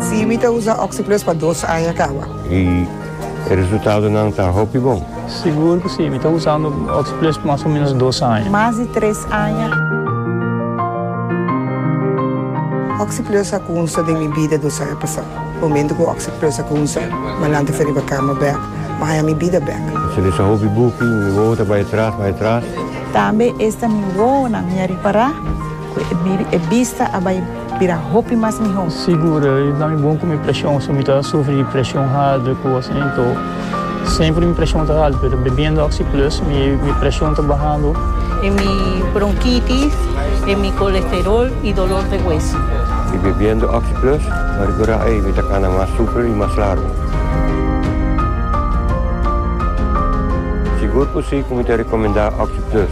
Sí, mi ta usa Oxi-Plus pa dos aña kawa. I e resultadonan ta hopi bon? Sigur ku sí, mi ta usando Oxi-Plus pa mas o ménos dos aña. Mas di tres aña. Oxi-Plus a kunsa den mi bida dos aña pasá. Momentu ku Oxi-Plus a kunsa, m'al lanta fen riba kama bèk, m'a haña mi bida bèk. M'sin usa hopi buki, mi wowo ta bai atras, bai atras. Tambe esta mi wowonan mi a ripará ku e bista a bai. Bira hopi mas mihó. Sigur, i ta mi bon ku mi preshon, so mi ta sufri di preshon haltu ku kos asin. Too, semper mi preshon ta haltu, pero bebiendo Oxi Plus mi preshon ta bahando. E mi bronkitis, e mi kolesterol i dolor de hueso. I bebiendo Oxi Plus, pa rekurá ei, mi ta kana mas super i mas largu. Sigur ku si ku mi ta rekomendá Oxi Plus.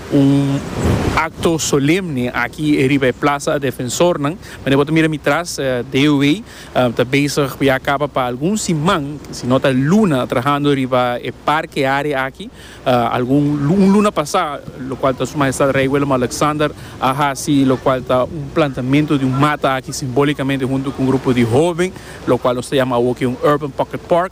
Un acto solemne aki riba e plaza a defensornan. Mende bo ta mira mi tras, DOW ta bezig pa ya caba pa algun siman, si no ta luna, trahando riba e parke area aki. Algun, un luna pasa, locual ta Su Majestad Rey Willem-Alexander a haci locual ta un plantamento di un mata aki, simbólicamente hunto cu un grupo di hoben, locual nos ta yama awo aki un Urban Pocket Park.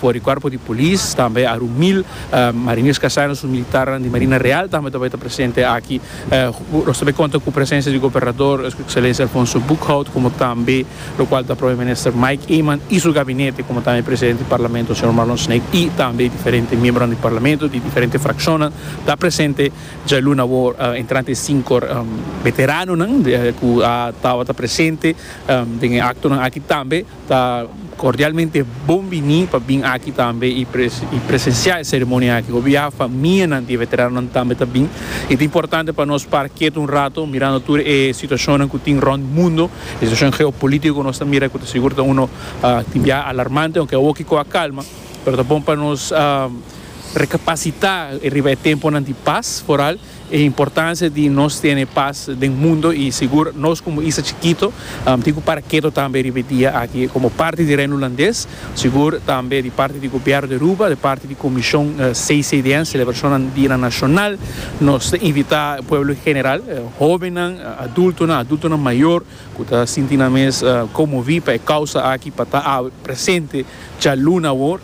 For di cuerpo di polis tambe a run mil mariniers casanos su militarnan di Marina Real tambe ta bay ta presente aki. Nos ta bay conta cu presencia di Gobernador Su Excelencia Alfonso Boekhout como tambe lo cual ta Prome Minister Mike Eman y su gabinete como tambe Presidente di Parlamento Señor Marlon Snape y tambe diferente miembronan di Parlamento di diferente fraccionnan ta presente djalun awo entrante e cinco veteranonan cu a tawata presente den e actonan aki tambe. Ta cordialmente bon bini pa bin aki tambe y presencia e ceremonia aki. Hopi ya famianan di e veteranonan tambe ta bin y ta importante pa nos para kiet un rato mirando tur e situacionnan cu tin rond mundo, e situacion geopolitico cu nos ta mira cu ta sigur ta uno tin bia alarmante, aunke awo kico a calma, pero ta bon pa nos recapacita riba e temponan di paz foral. E importancia di nos tene paz den mundo y sigur nos como isla chikito tin cu para keto tambe riba e dia aki. Como parti di Reino Hulandes sigur tambe di parti di Gobierno di Aruba, di parti di Comision CCDN, Celebracionnan Dianan Nacional, nos ta invita e pueblo en general, hobennan, adultonan, adultonan mayor cu ta sinti nan mes conmovi pa e causa aki pa ta awe presente djaluna awor.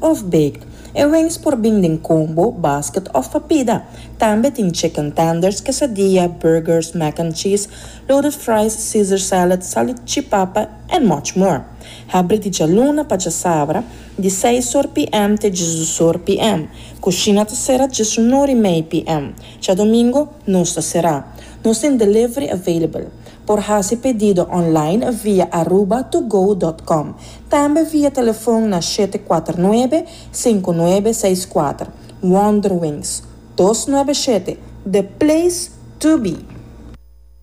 Of baked. E wings por bin den combo, basket of papida. Tambe tin chicken tenders, quesadilla, burgers, mac and cheese, loaded fries, caesar salad, salichipapa and much more. Habri di djaluna pa djasabra, di seis or pm te djis-dus or pm. Cushina ta cera djis un or y mei pm. Djadomingo nos ta cera. Nos tin delivery available. Por haci pedido online via aruba2go dot com. Tambe via telefon na shete kuater nuebe, sinku nuebe, seis kuater. Wonderwings, dos nuebe shete, the place to be!